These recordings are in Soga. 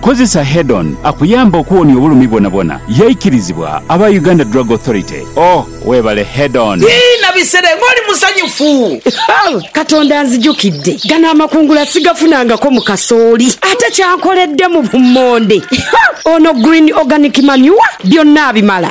Kozesa Head-On akuyambe okuwonia obulumi bwonabwona. Yaikirizibwa aba Uganda Drug Authority. Oh, webale Head-On! Ii, Na bisere nga oli musanyufu. Katonda anzijukidde. Gano amakungula sigafunangako mu kasooli. Ate ky'ankoledde mu bummonde! Ono Green Organic Manure byonna abimala.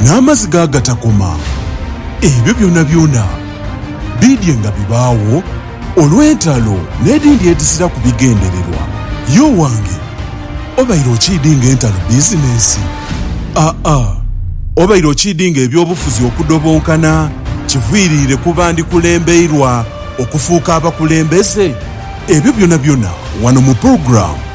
n'amaziga agatakoma, ebyo byonabyona biidye nga bibaagho olw'entalo n'edhindi edhiziraku bigendererwa. Ye owange, obaire okiidinga entalo bizinensi? Aa, obaire okiidinga eby'obufuzi okudobonkana kiviiriire ku bandi kulembeirwa okufuuka abakulembeze? Ebyo byonabyona wano mu pulogulaamu.